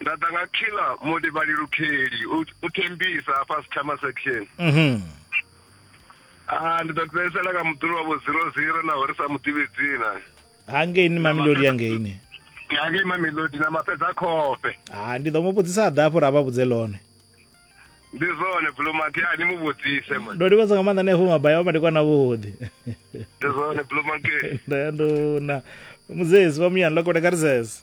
nda ḓa nga khila mulivhali lukheli u thembisa hafha sithama section mhm. ah, ndi ḓo fhedzisela nga muḓulu wa vho zero zero naho ri sa mu ḓivhi dzina hangeini mamelodi yangeini hangei mamelodi na mafhedza khofhe ha ah, ndi ḓo mu vhudzisa a ḓa hafho ra vha vhudze lone ndi zwone blumanki a ni mu vhudzise ndo livhadza nga maanḓa nefo mabaya vha madikwana vhuḓi ndi zwone blumanki ndanduna muzezi wa muyani lakone karisese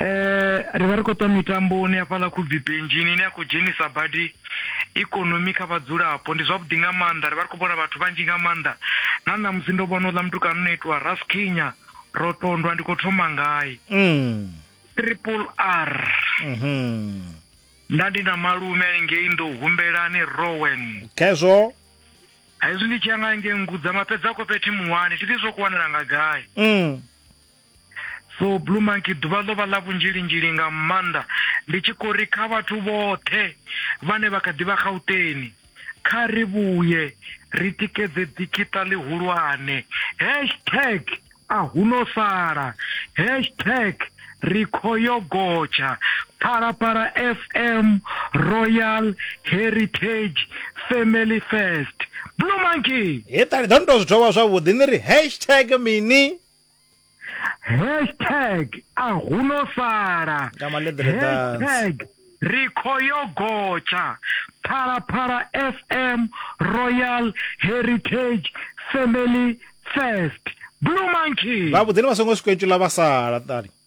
Eh, ri vha ri khou ṱwa mitamboni hafhaḽa khubvipenjini ine ya khou dzhenisa badi ikonomi kha vhadzulapo ndi zwavhuḓi nga maanḓa ri vha ri khou vhona vhathu vhanzhi nga maanḓa na ṋamusi ndo vhona uḽa mutukana u no itiwa raskinya ro tondwa ndi khou thoma ngayi mm. triple r mm -hmm. nda ndi na malume aningei ndo humbelani rowen khezwo hezwi ndi tshi ya nga ngengudza mapedza kophethi muwani thi ḓi zwo kuwanela nga gai mm. So Blue Monkey ḓuvha ḽo vha ḽa vhunzhilinzhili nga maanḓa ndi tshi khou ri kha vhathu vhoṱhe vhane vha kha ḓi vha Gauteng kha ri vhuye ri tikedze ḓikiṱa ḽihulwane hashtag a huno sala hashtag ri kho yo gotsha Phalaphala FM Royal Heritage Family First Blue Monkey. He ṱali ḓo ni tou zwi thoma zwavhuḓi ni ri hashtag mini. hashtag a hu no sala hashtag ri khou yo gotsha phalaphala fm royal heritage family first blue monkey vhavhuḓi ni vha songo swika itula vha sala ṱali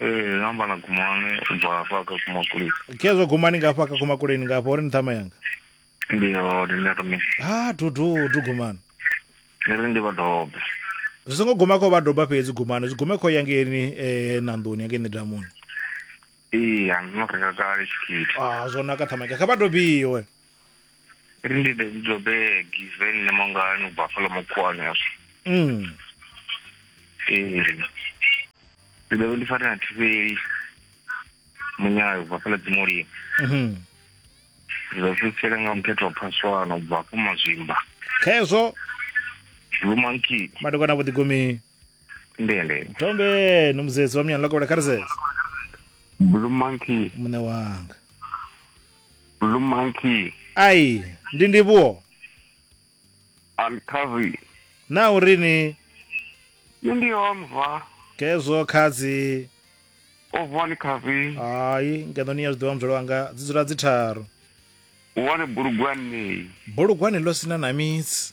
ee nga amba na gumane u bva hafha kha kumakuleni khezwo gumani nga hafha kha kumakuleni nga hafha uri ni ṱhama yanga ndi hone nṋe ri mini ha dududu gumani ni ri ndi vhadobe zwi songo guma kho vha doba fhedzi gumani zwi gume kho yangeni um nanḓoni yangeni damuni ee andino renga kale tshikhithi a zwo naka ṱhama yanga kha vha dobiwe Ri ndi David Jobe Given ne mangani u bva fhala mukhuwani hezwo. Mm. Ee. Ndi ḓo ndi fare na thivheli munyayo bva fhala dzimolimo. Mhm. Ndi ḓo fhedzisela nga muthethe wa phaswana u bva afho mazwimba. Khezwo Blue monkey madokwana vho ḓigumi. ndende. Tombe no muzedzi wa muyani lokobela kha ri zeze. Blue monkey Muṋe wanga. Blue Monkey, ai ndi ndivhuwo Alkavi. na u ri ni Nṋe ndi Omva, khezwo khadzi Ovani Kavi, hai ngeno ni ya zwiḓivha muzwale wanga dzi dzula dzi tharu wane bulugwanei. bulugwane ḽo sina na mitsi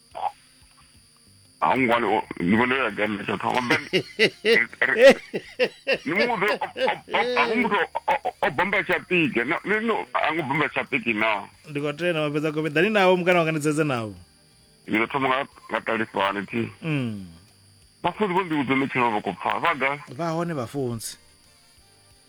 a ho ngo wani ni vhona ya gani na tshathu hamba ni mu do a ho muthu o bomba tsha pike no no a ngo bomba tsha pike na ndi khou tenda mafhedza kobe dani navho mukana wanga ndi dzedze navho ni do thoma nga nga talifani ti mm vhafunzi vho ndi vhudza ni tshilo vha khou pfa vha ga vha hone vhafunzi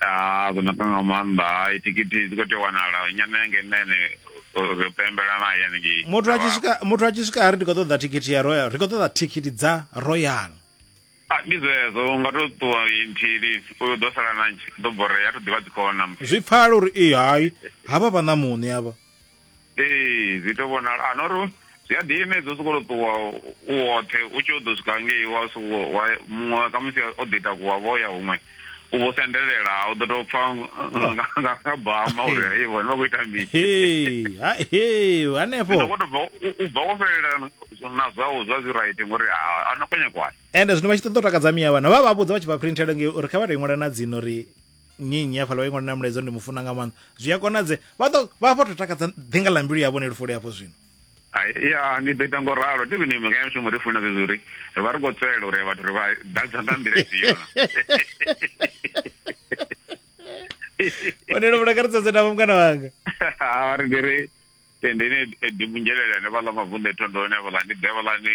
Ah, zwo naka nga maanḓa hai thikhithi dzi khou tea u wanala nyana yange nṋe ene ro pembela naye hanengei muthu a tshi swika muthu a tshi swika a ri ndi khou ṱoḓa thikhithi ya royal ri khou ṱoḓa thikhithi dza royal Ah, ndi zwezwo u nga to ṱuwa inthili u ḓo sala na ntshi ḓo borea a to ḓivha dzi khou hona zwi pfala uri ee hai havha vha ṋamuṋe avha ee zwi to vhonala a nori zwi a ḓiimedza u soko to ṱuwa u woṱhe u tshi u ḓo swika ngei wa soko wa muṅwe ka musi o ḓi takuwa vho ya huṅwe u vho sendelela u ḓo tou pfa nga bama uri hei vhone vha khou ita mini hanefho u bva wo fhelela na zwau zwa zwi right ngori a no khonye kwani ende zwino vha tshi ṱoḓa u takadza miya vhana vha vha vhudza vha tshi vha printela ngei uri kha vha to i ṅwala na dzino uri nnyi nnyi hafhaḽa wa ingo na mulaedza ndi mufuna nga maanḓa zwi a konadze vha ḓo vha vho to takadza ḓinga ḽa mbilu yavho ne lufuli hafho zwino ya ni ḓo ita ngo ralo ndi vhine mika ya shumo ri funa zwezwi uri ri vha ri khou tswelela uri vhathu ri vha ḓadza nga nḓila ifhio onelo vhulakaridza dze navho mukana wanga a ri ndi ri tendeni dimungelelene vhaḽa mavunḓu ethondoni avhaḽa ndi ḓe vhaḽani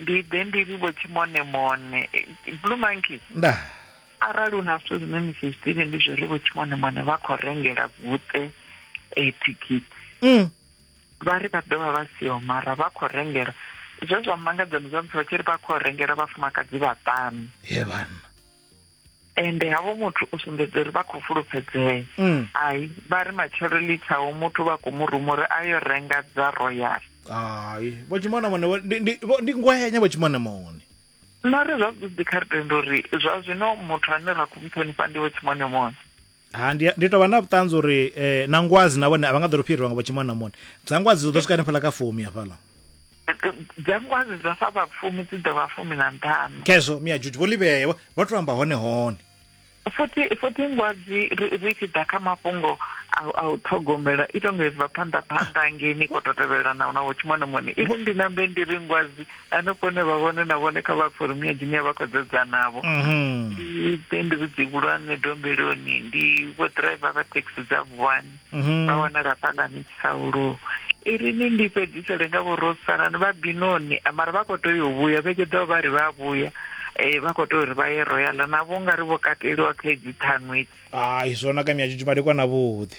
Ndi ḓe ndi ri vho tshimonemone. Blue Monkey. Ndaa. Arali hu na zwithu zwine ni si zwi ḓivhe ndi zwo ri vho tshimonemone vha khou rengela Guṱe eh, thikhithi. Mm. Vha ri vha ḓo vha vha siho mara vha khou rengela. Zwe zwa mmangadza ndi zwa musi vha tshi ri vha khou rengela vhafumakadzi vhaṱanu. Ye vhanna. ende havho muthu u sumbedza uri vha khou fulufhedzea mm. ai vha ri matshelo litshaho muthu vha khou mu ruma uri a yo renga dza royal hai vho tshimona mone ndi ngwenya vho tshimona mone nare zwavhuḓi kha ri tenda uri zwa zwino muthu ane ra khou mu ṱhonifha ndi vho tshimone mone ha ndi ndi tou vha na vhuṱanzi uri eh, na ngwazi na vhone a vha nga ḓo ri fhirwa nga vho tshimwana mone dza ngwazi dzi ḓo swika hanefhala kha fumi hafhala dza ngwazi dza sa vha fumi dzi ḓo vha fumi na nṱhanu khezwo mia juju vho livhea vho vho tou amba hone hone futhi futhi ngwazi ri ri tshi ḓa kha mafhungo a a u ṱhogomela i tonga ibva phanḓa phanḓa ngei ni khou to tevhelelana na vho tshimwana mone iri ndi nambe ndi ri ngwazi hanefho hune vha vhone na vhone kha vha forumu ya dzine vha khou dzedza navho mhm. ndi ndi vhudzi vhulwane dombeloni ndi vho driver vha taxi dza vuwani mhm. vha wanala fhalani tsaulu irini ndi fhedzisele nga vhorosanani vha binoni mara vha khou tea yo vhuya vhege ḓo vha ri vha vhuya um vha khou tea uri vha ye royala navho nga ri vho kateliwa kha edzi ṱhanwedzi hai zwona ka miyajujumadekwa na vhuḓi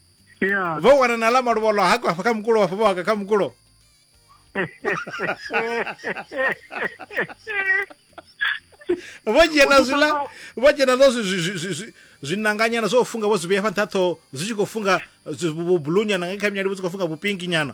ya vho wana na ḽa maluvholo hako hafha kha mukulo hafha vho haka kha mukulo vho dzhia na zwiḽa vho dzhia na zwo zwi- zwi- zwi- zwi- zwi- zwiṋanganyana zwo funga vho zwi vhea fha nṱha ṱhoho zwi tshi khou funga zwi- vhu- vhubulunyana nga kha minyali vho zwi khou funga vhupinki nyana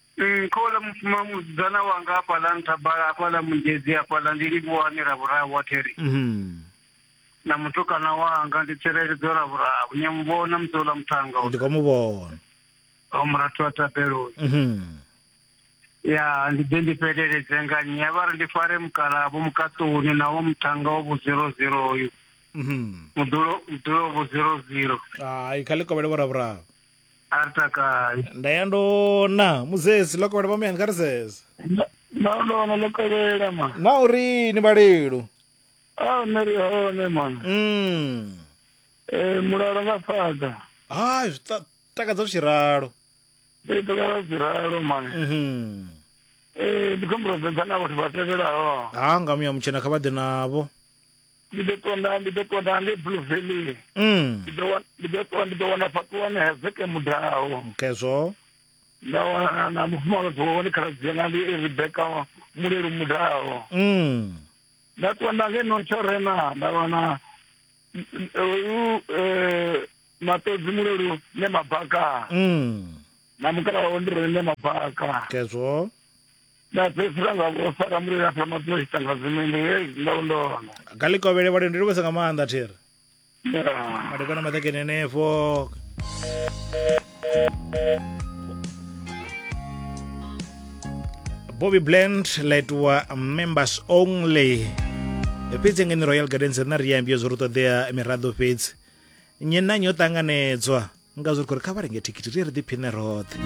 Mm, khola mufuma musidzana wanga hafhaḽa nthabala hafhaḽa mungezi hafhaḽa ndi livhuwani ra vhuraru wa theri Mhm. na mutukana wanga ndi tsireledzo ra vhuraru ni a mu vhona musi uḽa muthanga ndi khou mu vhona o murathu wa tabeloni Mhm. ya ndi ḓe ndi fheleledze nga nnyi a vha ri ndi fare mukalavho mukaṱoni na wa muthanga wa vhu zero zero uyu Mhm. mudulo mudulo wa vhu zero zero hai kha ḽi kovhele vhoravhuraru a ri takai nda ya ndona muzesi ḽo kovhela vhamuyani kha ri sese na ndona ḽo kovhela ma na uri ni vhalelu a nṋe ri hone ma mm. Eh, mulalo nga fhaḓa hai zwi ta- takadza zwi tshi ralo ndi ḓola zwi ralo ma Mhm. Eh, ndi khombo sedza na vhathu vha tevhelaho ha nga muya mutshena kha vha ḓe navho ndi ḓo tonda ndi ḓo tonda nge blue valley mm. ndi ḓo ndi ḓo tonda ndi ḓo wana fhaṱuwani hezeke mudaho kezwo nda wana na mufumakadzi wawe ndi khaladzi yanga ndi rebeka mulelu mudaho mm. nda tonda nge notshorena nda wana uyu eh, matodzi mulelu ne mabaka mm. na mukala wawe ndi rene mabaka kezwo nda fhedzisela nga vho fara mulilo afha maphoyisa nga zwimende hei ndo ndona kha ḽi kovhele vhalio ndi livhesa nga maanḓa thiri Yeah. madekwana maṱakeni henefho bobby blend laitiwa members only fhedzi ngeni royal gardens rina ri ambio zwo ri ṱoḓea miraḓo fhedzi nnyi na nnyi o ṱanganedzwa nga zwo ri khou ri kha vha renge thikhithi ri ye ri ḓiphine roṱhe